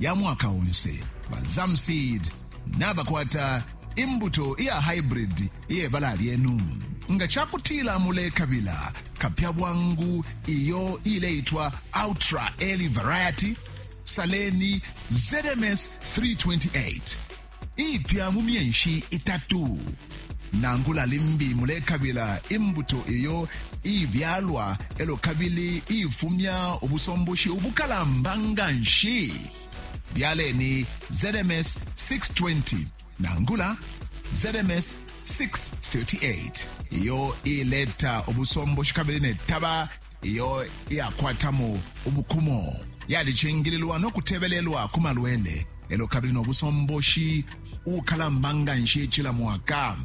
ya mwaka onse ba zamseed nabakwata imbuto iya hybrid iye bala lyenu nga ca kutila mulekabila kapya bwangu iyo ileitwa ultra early variety saleni zms 328 iipya mu myenshi itatu. Nangula limbi mulekabila imbuto iyo iibyalwa elo kabili iifumya ubusomboshi ubukalamba nganshi, byaleni ZMS 620 nangula ZMS 638 iyo iileta ubusomboshi kabili ne taba iyo iyakwatamo ubukumo yalicingililwa no kutebelelwa ku malwele elo kabili no busomboshi ukalamba nga nshi cila mwaka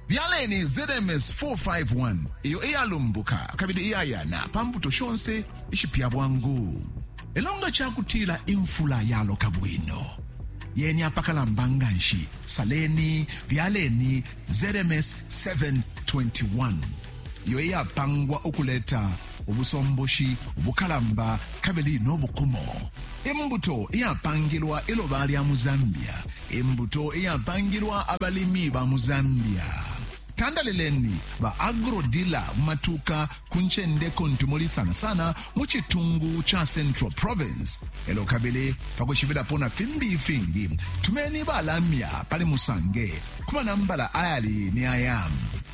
byaleni zms 451 iyo iyalumbuka kabili iyayana pa mbuto shonse ishipya bwangu elo nga cakutila imfula yaloka bwino yeni apakalamba nga nshi saleni byaleni zms 721 iyo iyapangwa ukuleta ubusomboshi ubukalamba kabili no bukumo, imbuto iyapangilwa iloba lya mu Zambia, imbuto iyapangilwa abalimi ba mu Zambia. Tandalileni ba agro-dealer mu matuka ku ncende kuntu muli sana sana mu citungu ca Central Province. Elo kabili pa kwishibilapo na fimbi ifingi, tumeni ba lamya pali Musange ku manambala ayali ni aya